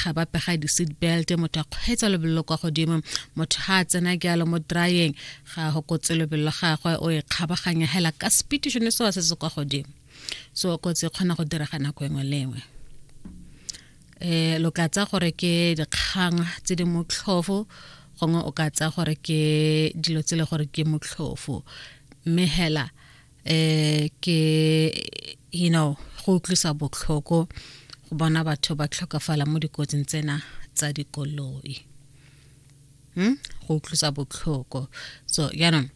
ga ba pega di-seat belt motho a kgweetsa lebelelo kwa godimo motho ga a tsena jalo mo dryeng ga go kotse lebelelo gagwe o e kgabaganya hela ka speed sone sewa se se kwa godimo so kotsi e kgona go direga nako engwe le engwe um lo ka tsa gore ke dikgang tse di motlhofo gongwe o ka tsa gore ke dilo tse le gore ke motlhofo mme hela eh ke you know go utlwisa botlhoko go bona batho ba tlhokafala mo dikotsing tsena tsa dikoloi hmm? go utlwisa botlhoko so jaanong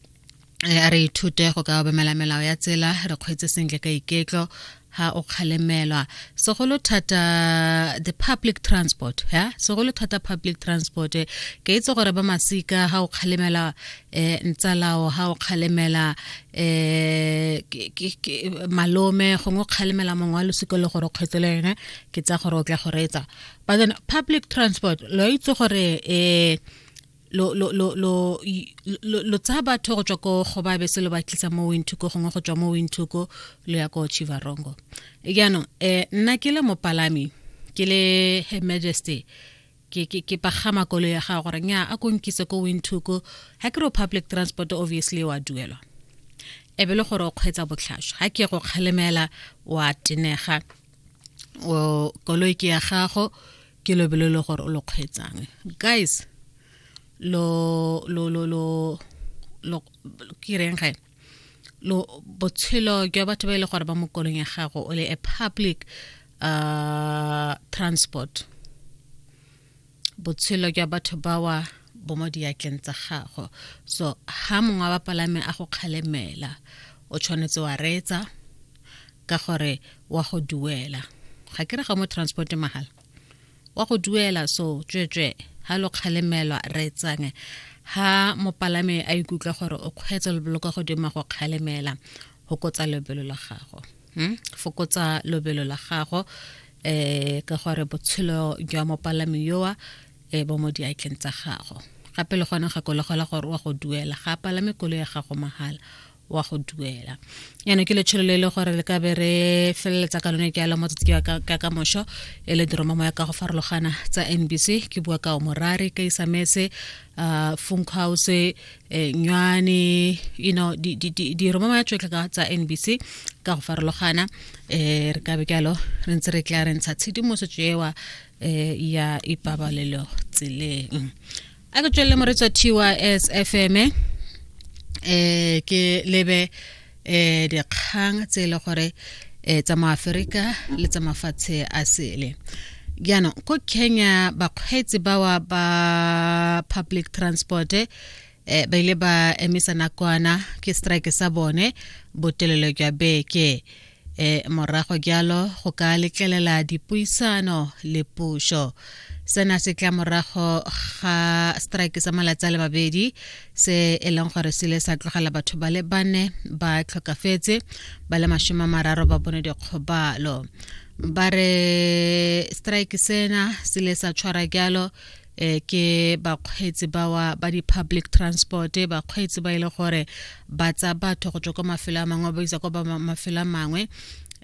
eh, a re ithute go ka obamela melao ya tsela re kgweetse sentle ka iketlo ha o kgalemelwa segolo thata the public transport ya segolo thata public transport ke itse gore ba masika ha o kgalemela eh ntsalao ha o kgalemela eh malome gongwe o kgalemela mongwe wa losiko le gore kgwetse le yone ke tsa gore o tla go reetsa but then public transport lo itse gore eh lo lo lo lo lo tsa batho go tswa ko go ba bese lo ba tlisa mo winthuko gongwe go tswa mo winthuko lo ya ko chivarongo jaanong um nna ke le mopalami ke le her majesty ke ke ke pagama kolo ya ga gore nya a konkise ko winthuko ha ke ro public transport obviously wa duelwa e be le gore o kgwetsa botlhaswa ha ke go kgalemela wa tenega o koloi ke ya gago ke lobelo le gore o lo kgweetsang guys lo lo lo lo lo ke reng gae lo botshelo jwa batho ba e le gore ba mo kolong ya gago o le a public uh, transport botshelo jwa batho bawa bo mo diatleng tsa gago so ha mongwe wa bapalame a go kgalemela o tshwanetse wa reetsa ka gore wa go duela ga ke re ga mo transport mahala wa go duela so tswetswe ha lo kgalemelwa re tsange ha mopalame a ikutlwa gore o kgweetse lebelo ka godimo go kgalemela fokotsa lebelo la gago hmm? fokotsa lobelo la gago eh ka gore botshelo jwa mopalami yoa e bo mo diatleng tsa gago gape le gone gakologelwa gore wa go duela ga palame kolo ya gago mahala wa go duela yana ke letsholo le e le gore le ka be re feleletsa ka lone ke alo motsatsi ke ka ka mosho e le diroma moya ka go farologana tsa NBC ke bua ka omorare ka isamese uh funk house eh, nywane you know di di di di roma moya tšotlhe ka tsa NBC ka go farologana eh re ka be ke alo re ntse re tla re ntsha tshedimosetso ewa eh ya ipabalelo tseleng a ke tswelele moretsa tys fm eh ke lebe eh dikgang tse e le gore eh tsa mo Afrika le tsa mafatshe a sele jaanong ko kenya bakgweetsi bawa ba public transport eh ba ile ba emisa nakwana ke strike sa bone botelelo jwa beke e morago jalo go ka letlelela dipuisano le puso sena se tla morago ga strike sa malatsi a le mabedi se e leng gore se le sa tlogela batho ba le bane ba tlhokafetse ba le masome a mararo ba bone dikgobalo ba re strike sena se le sa tshwara jalo eh ke bakgweetsi bawa ba di-public transport bakgweetsi ba e le gore ba tsa batho go tswa kwa mafelo a mangwe ba isa kwa mafelo a mangwe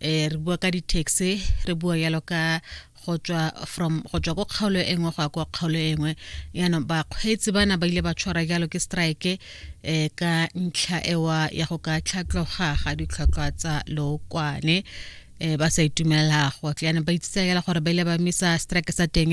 eh re bua ka di-taxi re bua yalo ka go tswa from go tswa ko kgaolo e nngwe go ya kwa kgaolo e nngwe yaanong bakgweetsi bana ba ile ba tshwara jalo ke strike um ka ntlha ewa ya go ka tlhatlhoga ga ditlhwatlhwa tsa lookwane eh ba sa itumela go tleana ba itsitsa yela gore ba ile ba misa strike sa teng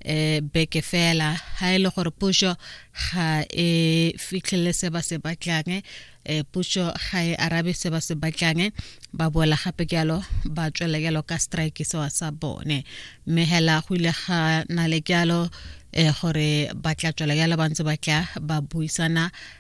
eh beke fela ha ile e gore puso ga e fitlhele se ba se batlang eh puso ga e arabe se ba se batlang ba boela gape jalo ba tswela jalo ka strike se wa sa bone mme hela go ile ga na le jalo eh gore ba tla tswela jalo ba ntse ba tla ba buisana